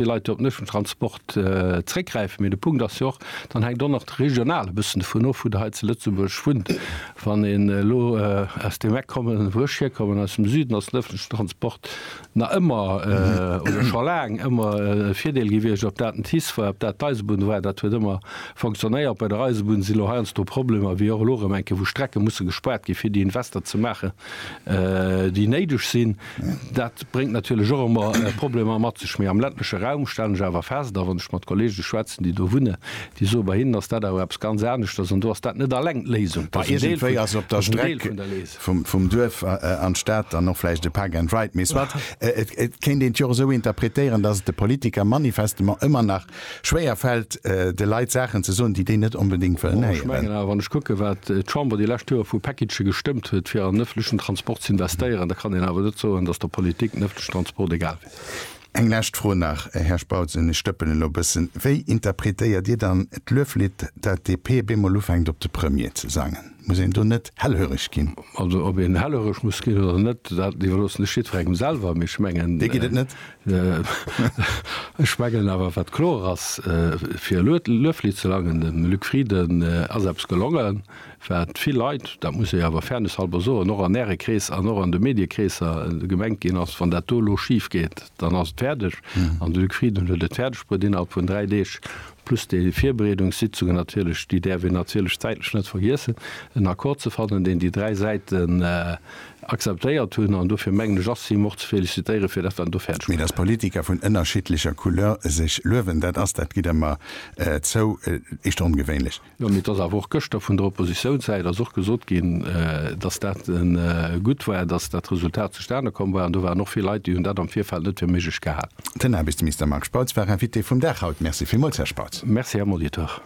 Déi Leit, déi op den ëffentlechen Transport zréckgräifen. Mee de Punkt ass jo och, dann hänkt och nach regional e bëssen dovun of, wou Der hei zu Lëtzebuerg wunnt. Wann een elo aus deem Eck kommen, wou ech hierkommen, aus dem Süden, ass den ëffentlechen Transport nach ëmmer oder scho laang ëmmer e Virdeel gewiescht. Ob dat den TICE war, ob dat d'Eisebunn war, dat huet ëmmer fonctionnéiert. Bei der Eisebunn si elo heiansdo Problemer, wéi och elo erëm eng Kéier, wou Strecke musse gespaart gi fir déi Invester ze maachen. déi néideg sinn. Dat bréngt natierlech och ëmmer Problemer mat sech. Mee am ländleche Raum stellen ech awer fest, a wann ech mat Kollege schwätzen, déi do wunnen, déi soe bei hinnen ass dat awer eppes ganz aneschters. An do ass dat net alleng d'Léisung. Dat ass en Deel vun der Léisung. Mä iergendwéi ass op der Streck vum Duerf an d'Stad dann och vläicht e Park and Ride. Mee soit, et kéint een et jo och esou interpretéieren, datt et de Politiker manifestement ëmmer nach schwéier fält, de Leit Saachen ze soen, déi déi net onbedéngt wëllen héieren. Ech mengen awer, wann ech kucke wat d'Chamber déi lescht Joer vu Packagë gestëmmt huet, fir an den ëffentlechen Transport z'investéieren, da kann een awer net soen, datt der Politik den ëffentlechen Transport egal wier. Eng lescht Fro nach, Här Spautz, an ech dëppen elo e bëssen, Wéi interpretéiert Dir dann d'Lueflidd, dat d'DP op eemol ufänkt op de Premier ze sangen? Muss een do net hellhöreg ginn? Also ob een hellhöreg muss ginn oder net, dat iwwerloossen ech jiddferengem selwer. Mee ech mengen, Dee geet et net. Ech mengen awer, wat kloer ass, fir elo d'Lueflidd ze langen, Dem Luc Frieden ass eppes gelongen, wat vill Leit, dat muss ee awer fairnesshalber soen, och an Äre Krees an och an de Mediekreesser gemengt ginn ass, Wann dat do elo schif geet, dann ass et fäerdeg an de Luc Frieden huet et fäerdeg bruet innerhalb vun dräi Deeg, plus déi Virbereedungssitzungen natierlech, déi däerf een natierlech zäitlech net vergiessen, en Accord ze fannen, deen déi dräi Säiten akzeptéiert hunn. An dofir mengen ech, ass him och ze félicitéieren, fir dat wat en do fäerdeg Mee bruet dass huet. Politiker vun ënnerschiddlecher Couleur sech luewen, dat ass, dat gitt Der mer zou, echt ongewéinlech. Jo, mee et ass awer och gëschter vun der Oppositiounssäit ass och gesot ginn, dass dat gutt war, dass dat Resultat zustane komm war. An do waren och vill Leit, déi hunn dat am Virfeld net fir méiglech gehal. Den Aarbechtsminister Marc Spautz war Invité vum Dag haut. Merci villmools, Här Spautz. Merci, Här Molitor.